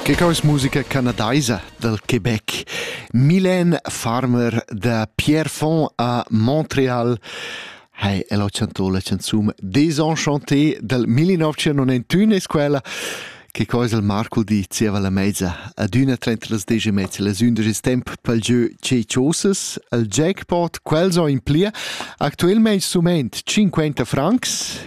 Che cos musica canadaisa dal Quebec. Mylène Farmer da Pierrefonds a Montreal ha el accentuo la canzone Désenchanté del 1991 es quella che cosa il Marco di zieva la mezza ad üna 33 e mezza las ünderis temp pel gieu Cecioses, al jackpot, quels ho in plia, actuelmaing sument 50 francs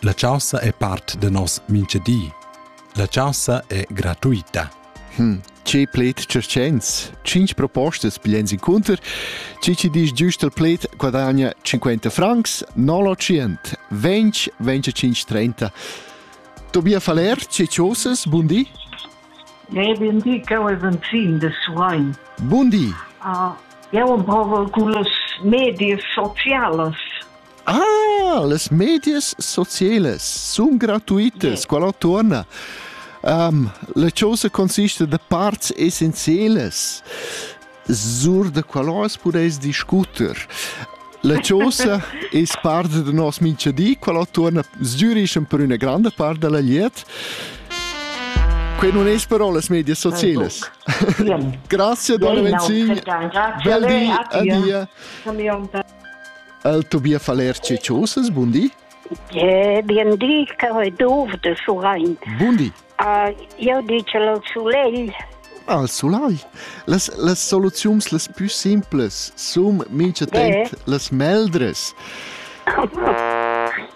La chaussa è part da nos minchadi. La chaussa è gratuita. Hm, che pled circens! Cinc propostas bigliens incunter, ci ci disch giust al pled guadagna 50 francs, non lo 100, 20, 25, 30. Tobias Faller, ce chosas, bundi? Ne, bundi, che ho un fin de suain. Bundi! Uh, eu am provo cu las medias socialas. Ah, las medias socielas sun gratuitas, quella tuorna. Um, la chosa consiste da parts essenzialas sur da qualoas pudeis discuter. La chosa es parte da nos minchadi, quella tuorna Zürich per üna grande part della liet. Quei non es però las medias socielas. Grazie, Dona Venzin. Bel di, adia. El Tobia Falerci Chosas, bundi. Je, bien di, che ho dovde su rein. Bundi. Uh, io dice al sulei. Al sulai. Las, las soluziuns las più simples, sum mincha temp, yeah. las meldres.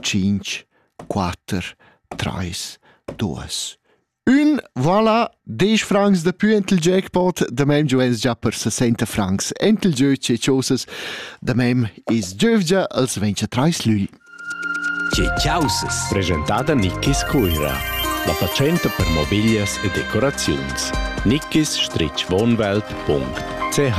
tschinch, quatter, trais, duos. Ün vala desch francs da pü ent il jackpot, da mem giò es già per 60 francs ent il giövgia e chosas, da mem es giövgia als 23 lügl. Tge chausas? Presentada Nickis Cuira. La fatschenta per mobiglias e decoraziuns. Nickis-wohnwelt.ch